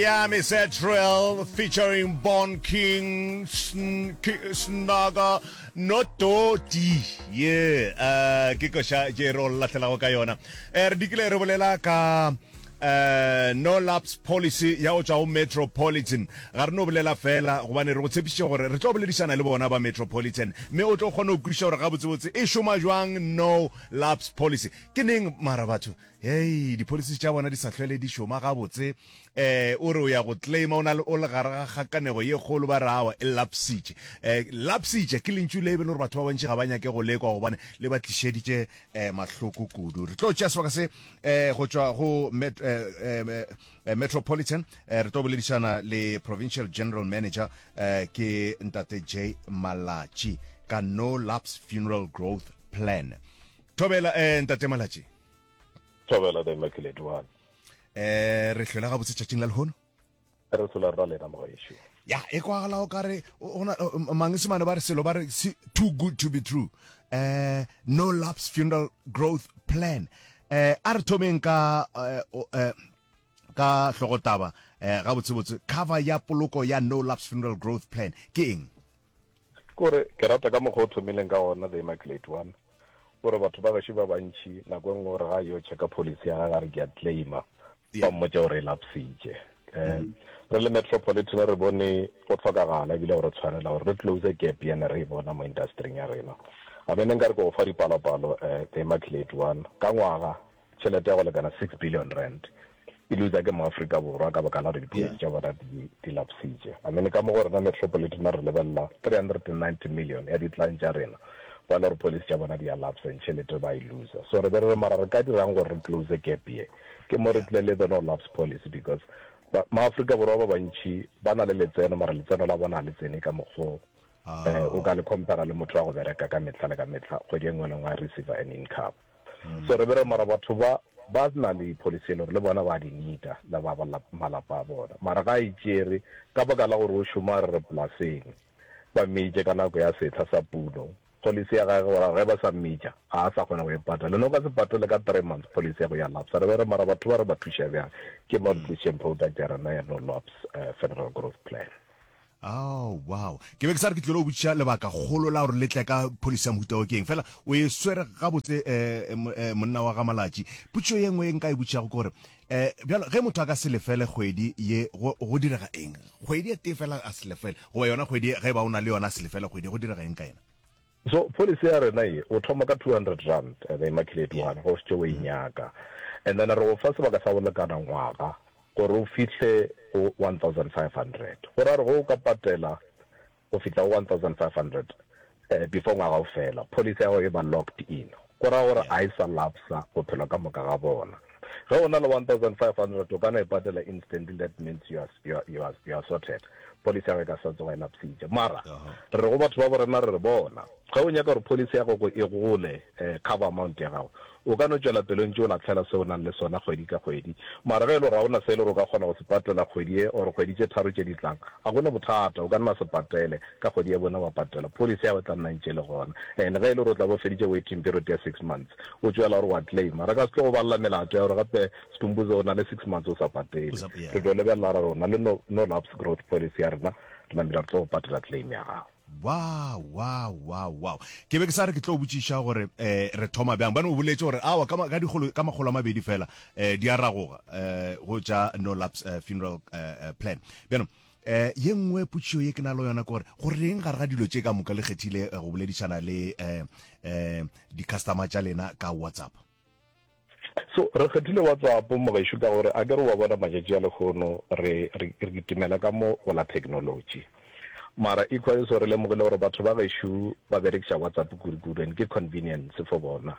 Ya me Zetrel featuring Born King, Snaka, no Toti. Ye, eh, ke koša je re o lahlelago ka yona. Eh, re dikile re bolela ka eh no laps policy ya go tswa go metropolitan ga re no bolela fela gobane re go tshepišitše gore re tlo boledišana le bona ba metropolitan mme o tlo kgona go kwešiša gore gabotsebotse e šoma jwang no laps policy ke neng mara batho Hei, dipholisi tša bona di sa hlwele di šoma gabotse. Eh, o re o ya go claima, o na le, o le gare ga kgakanego ye kgolo, ba re awa, e lapsitše. Eh, lapsitše, ke lentšu le e be le gore batho ba bantši ga ba nyake go le kwa gobane le ba tlišeditše eh, mahloko kudu. Re tlo tšea sebaka se eh, go tšwa go met, eh, eh, eh, Metropolitan. Eh, re tlo boledišana le Provincial General Manager, eh, ke Ntate J. Malatši, ka No Lapse Funeral Growth Plan. Thobela, eh, Ntate Malatši. thobela the immaculate one eh re hlola ga botse tšatšing la lehono re hlola rra lena mogaešo ya e kwagala o kare ona mangesemane ba re selo ba re too good to be true eh no loves funeral growth plan eh a re thomeng ka eh, eh ka hlogotaba eh gabotsebotse cover ya poloko ya no loves funeral growth plan ke eng Kore, ke rata ka mokgwa o thomileng ka gona, The Immaculate One. O re, Batho ba gašo ba bantši, nako e nngwe o re ga a yo checka policy ya gage, a re, Ke a claima. Ba mmotša gore e lapsitše. Re le Metropolitan re bone go hlokagala ebile go re tshwanela gore re close gap ye ne re e bona mo industry-ing ya rena. A be ne nka re ke go fa dipalopalo, The Immaculate One. Ka ngwaga, Tšhelete ya go lekana six billion rand e lutsa ke maAfrika Borwa ka baka la gore dipolitiki tša bona di di lapsitše. I mean ka mo go rena metropolitana re lebelela three hundred and ninety million ya ditlang tša rena kwa le gore policy tša bona di a lapsa and tšhelete ba e lutsa. So re be re re mara re ka dirang gore re close gap ye? Ke mo re tle le the no lapse policy because ba maAfrika Borwa ba bantši ba na le letseno mara letseno la bona ga le tsene ka mokgo o ka le compara le motho wa go bereka ka mehla le ka mehla kgwedi e nngwe le e nngwe a receiver an income. So re be re mara batho ba ba na le policy e le gore le bona ba di needa le ba malapa a bona mara ga e tšere ka baka la gore o šoma re re polaseng ba mmeitše ka nako ya sehla sa puno policy ya gage gore ge ba sa mmeitša ga a sa kgona go e patala le no ka se patele ka three months policy ya go ya lapsa re be re mara batho ba re ba thuša bjang ke malnutrition product ya rena ya no lapse federal growth plan. Oh, wow. Ke be ke sa re ke tlilo botšiša lebaka kgolo la gore le tle ka pholisi ya mohuta o keng. Fela, o e swere gabotse eh, eh, monna wa ga Malatši. Potšišo ye nngwe e nka e botšišago ke gore, eh, bjalo, ge motho a ka se lefele kgwedi ye, go, go direga eng? Kgwedi e tee fela a se lefele, goba yona kgwedi ge ba o na le yona a se lefele kgwedi, go direga eng ka yena? So policy ya rena ye, o thoma ka two hundred rand, the immaculate one, ge o šetše o e nyaka. And then re go fa sebaka sa go lekana ngwaga gore o fihle go one thousand five hundred. Go ra gore ge o ka patela go fihla go one thousand five hundred before ngwaga o fela, policy ya gago e ba locked in. Go ra gore a e sa lapsa bophelo ka moka ga bona. Ge o na le 1500 o ka no e patela instantly that means you are, you are, you are, you are sorted. Policy ya gago e ka sa tsoga e lapsitše. Mara re re go batho ba borena re re bona ge o nyaka gore policy ya gogo e gole eh, cover amount ya gago o ka no tšwela pele o ntše o latlhela se o nang le sona kgwedi ka kgwedi. Mara ge e le gore ga o na se e le gore o ka kgona go se patela kgwedi e or kgwedi tše tharo tše di tlang, ga go na bothata o ka nna se patele. Ka kgwedi ya bone wa patela. Policy ya go tla nna ntše le gona. And ge e le gore o tla bo feditše waiting period ya six months, o tšwela gore wa claima. Re ka se tlo go balela melato ya gore gape Stumbuze o na le six months o sa patele. Re tlo lebelela ra re o na le no lapse growth policy ya rena, Lamila re tlo go patela claim ya gago. Wow, wow, wow, wow. Ke be ke sa re ke tlo botšiša gore eh re thoma bjang. Bane o boletše gore aowa ka ka dikgolo ka makgolo a mabedi fela eh di a ragoga eh go tša no lapse funeral eh plan. Bjano E, ye nngwe putšio ye ke na le yona kore go reng gare ga dilo tše ka moka le kgethile eh, go boledišana le um um di-customer tša lena ka whatsapp so re kgethile whatsapp mogaešo ka gore a ke re wa bona matšatši a lekgono re re kitimela ka mo go la technology mara equally so re lemogile gore batho ba gešo ba berekiša whatsapp kudu-kudu and ke convenience for bona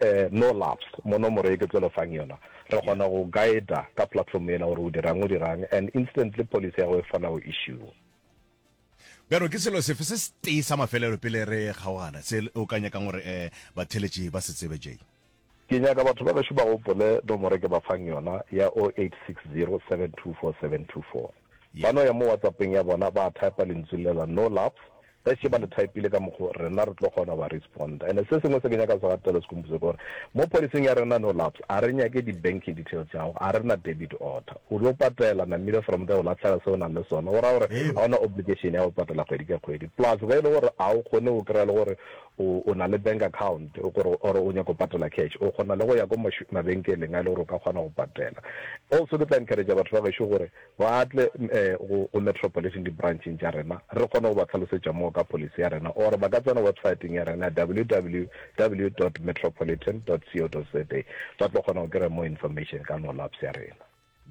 Ee, no laughs. Mo nomoro ye ke tlo le fang yona, re kgona go guider ka platform yela gore o dirang, o dirang, and instantly policy ya go e fana go issue. Bjalo ke selo sefe se setee sa mafelelo pele re kgaogana se o ka nyakang gore ee batheletši ba se tsebe, Jay? Ke nyaka batho ba gešo ba gopole nomoro ke ba fang yona ya 0860 724 724. Ba no ya mo WhatsApp-eng ya bona ba type-a lentsu lela no love, ge še ba le type-ile ka mokgo rena re tlo kgona go ba responda. And se sengwe se ke nyaka go se gatela se khomphuse ke gore mo policy-ing ya rena no loves a re nyake di banking details tša gago, a re na debit order. O yo patela namile from there o lahlega se o nang le sona. Go raya gore ga o na obligation ya go patela kgwedi ka kgwedi. Plus ge e le gore ga o kgone go kry-a le gore O, o na le bank account, gore, or o nyaka go patela cash, o kgona le go ya ko mash, mabenkeleng a e le gore o ka kgona go patela. Also, ke tla encourager batho ba gešo gore ba tle um go, go Metropolitan, di-branch-eng tša rena, re kgone go ba hlalosetša more ka policy ya rena, or ba ka tsena website-eng ya rena ya www dot metropolitan dot co dot za, ba tlo kgona go kry-a more information ka no labs ya rena.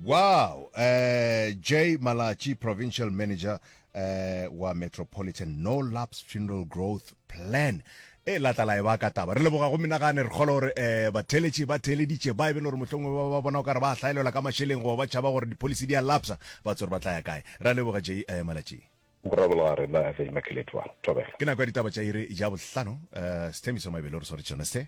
Wow! Uh, J Malatji, Provincial Manager uh, wa Metropolitan No Lapse Funeral Growth Plan e la tla la e ba ka taba re leboga go menagane re kgolo gore um batheletše ba theeleditše ba e be le gore mohlongwe ba ba bona o ka re ba hlaelelwa ka mašeleng goba ba tšhaba gore dipolicy di a lapsa ba tsore ba tla ya kae ra leboga j um malatšing morabologa rena a tsedi makeletwa thobela ke nako ya ditaba tša ire ja bohlano um sethemiso mabele o re sware tšone se